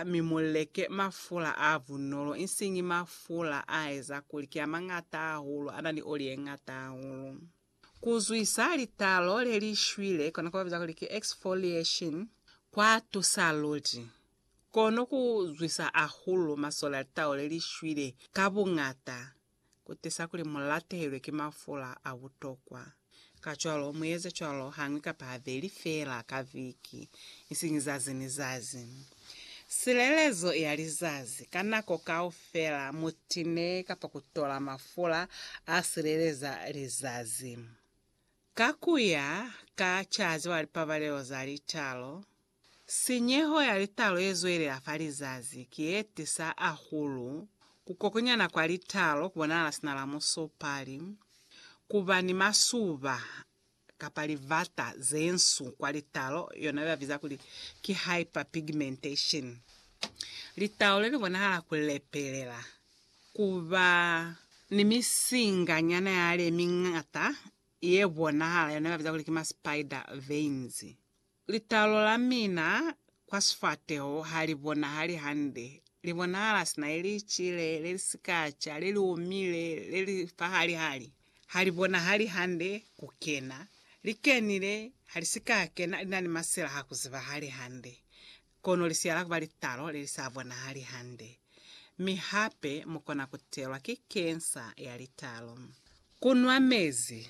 mi mu leke mafula a bunolo, isiñi mafula a eza kuli ki a mañata hahulu, a na ni oli ye ñata hahulu. Ku zwisa litalo le li shwile, kona kwa biza kuli ki exfoliation, kwa tusa luli. Kono ku zwisa hahulu masole a litalo le li shwile ka buñata. ku tisa kuli mu latehelwe ki mafula a butokwa. Kacwalo, mu eze cwalo hañwi kapa habeli feela ka viki, isiñi zazi ni zazi. Silelezo ya lizazi, Ka nako kaufela mu tine kapa ku tola mafula a sileleza lizazi. Ka ku ya ka Caazi wa Lipabalelo za Litalo, Sinyeho ya litalo ye zwelela fa lizazi ki ye tisa ahulu ku kokonyana kwa litalo ku bonahala sina la musopali, ku ba ni masuba kapa livata ze nsu kwa litalo, yona ba biza kuli ki hyperpigmentation. Litalo le li bonahala ku lepelela, ku ba ni misinga nyana ya le miñata ye bonahala, yona ba biza kuli ki ma spider veins. Litalo la mina kwa sifateho ha li bonahali hande. Li bonahala sina ili cile le li si ka ca, le li omile, le li fahali-hali. Ha li bonahali hande ku kena. Li kenile, ha li si ka kena, li na ni masila ha ku zibahali hande. Kono lisiya la kuba litalo le li sa bonahali hande, mi hape mu kona ku telwa ki kensa ya litalo. Ku nwa mezi.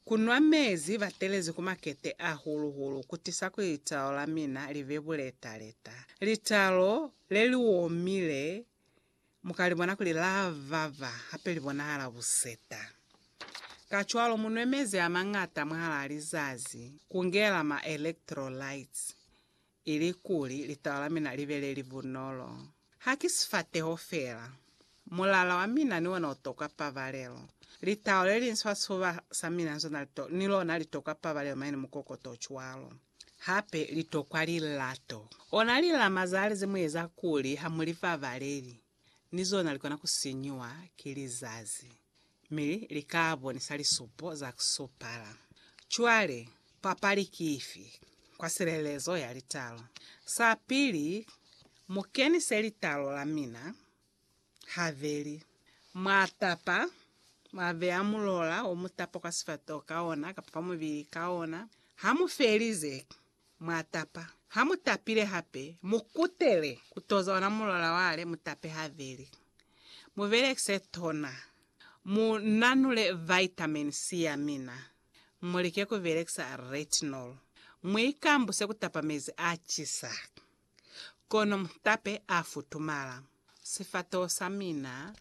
Ku nwa mezi batelezi ku makete ahulu-hulu ku tisa kuli litalo la mina li be buleta-leta. Litalo le li omile mu ka li bona kuli la baba hape li bonahala buseta. Kacwalo mu nwe mezi a mañata mwahalaa lizazi, ku ngela ma electrolytes. Ilikuli litaba la mina libe lelibunolo, haki sifateho feela. Mulala wa mina ni ona utokwa pabalelo. Litao lelingi sibasuba sa mina ni lona litokwa pabalelo mane ni mukokoto ocwalo. Hape litokwa lilato. Ona lilama zale zemueza kuli hamulipabaleli. ni zona likona kusinyiwa ki lizazi, mi lika bonisa lisupo za kusupala. Cwale, papali ki ifi? Kwa silelezo ya litalo. Sapili, mukenise litalo la mina, haveli. Mwa tapa, mwa beya mulola omutapa kwa sifatoho ka ona, kapa kwa mubili ka ona. Hamufelize, Mwa tapa. Ha mu tapile hape, mu kutele ku toza ona mulola wa le mu tape habeli. Mu belekise tona. Mu nanule vitamin C ya mina. Mu like ku belekisa retinol. Mu ikambuse ku tapa mezi a cisa. Kono mutape a futumala. Sifatoho sa mina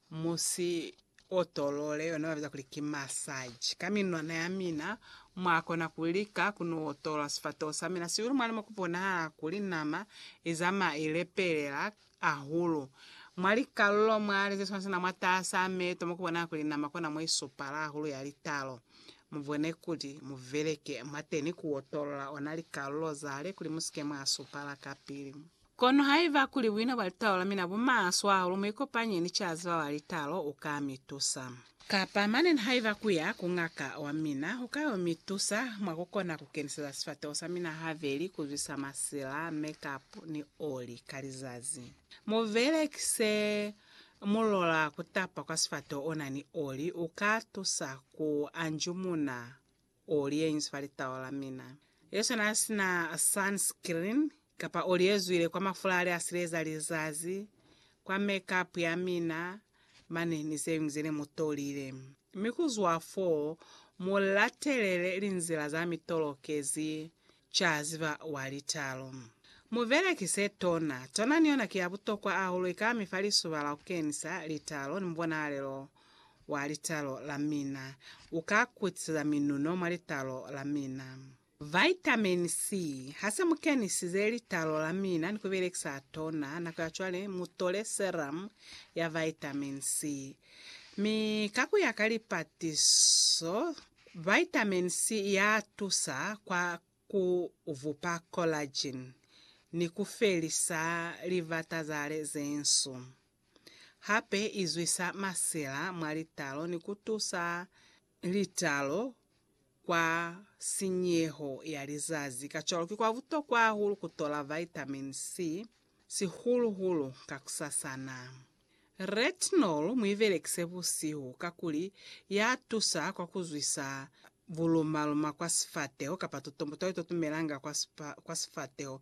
mu si otolole, yona ba biza kuli ki massage. Ka minwana ya mina, mwa kona ku lika ku no otolola sifatoho sa mina sihulu mwa limo ku bonahala kuli nama i zamaya i lepelela ahulu. Mwa likalulo mwa li zeswanasana mwataasa meto mukubona kuli nama kona moisupala ahulu ya litalo. Mubone kuti muveleke mwateni kuotolola ona likalulo zale kuli musike mwaasupala kapili. Kono haiba kuli buina bwa litalo lamina bumaswe ahulu, muikopanye ni caziba wa litalo uka mitusa. Kapa mane nihaiba kuya ku ngaka wa mina hukayo mi tusa mwa kukona ku keniseza sifateho sa mina habeli ku zwisa masila, makeup ni oli ka lizazi. Mu belekise mulola kutapa kwa sifateho ona ni oli, uka tusa ku anjumuna. Oli ye inzwi fa litau la mina. Yesu n'a si na sunscreen, kapa oli ye zwile kwa mafula a li a sileza lizazi, kwa make-up ya mina, mane ni ze ñwi ze ne mu tolile. Mi ku zwa fo, mu latelele linzila za mi tolokezi ca ziba wa litalo. Mu belekise tona. Tona ni yona ki ya butokwa ahulu, i ka mi fa lisuba la ku kenisa litalo ni mubonahalelo Wa litalo la mina. U ka kutiseza minuno mwa litalo la mina. Vitamin C. Ha se mu kenisize litalo la mina ni ku belekisa tona nako ya cwale, mu tole serum ya vitamin C. Mi ka ku ya ka lipatiso, vitamin C ya tusa kwa ku vupa collagen ni ku felisa livata za le ze nsu. Hape i zwisa masila mwa litalo ni ku tusa litalo kwa sinyeho ya lizazi. Kacwalo ki kwa butokwa hahulu ku tola vitamin C, sihulu-hulu kakusasana. Retinol mu i belekise busihu kakuli ya tusa kwa ku zwisa buluma-luma kwa sifateho kapa tutombo to itotumelanga kwa sifateho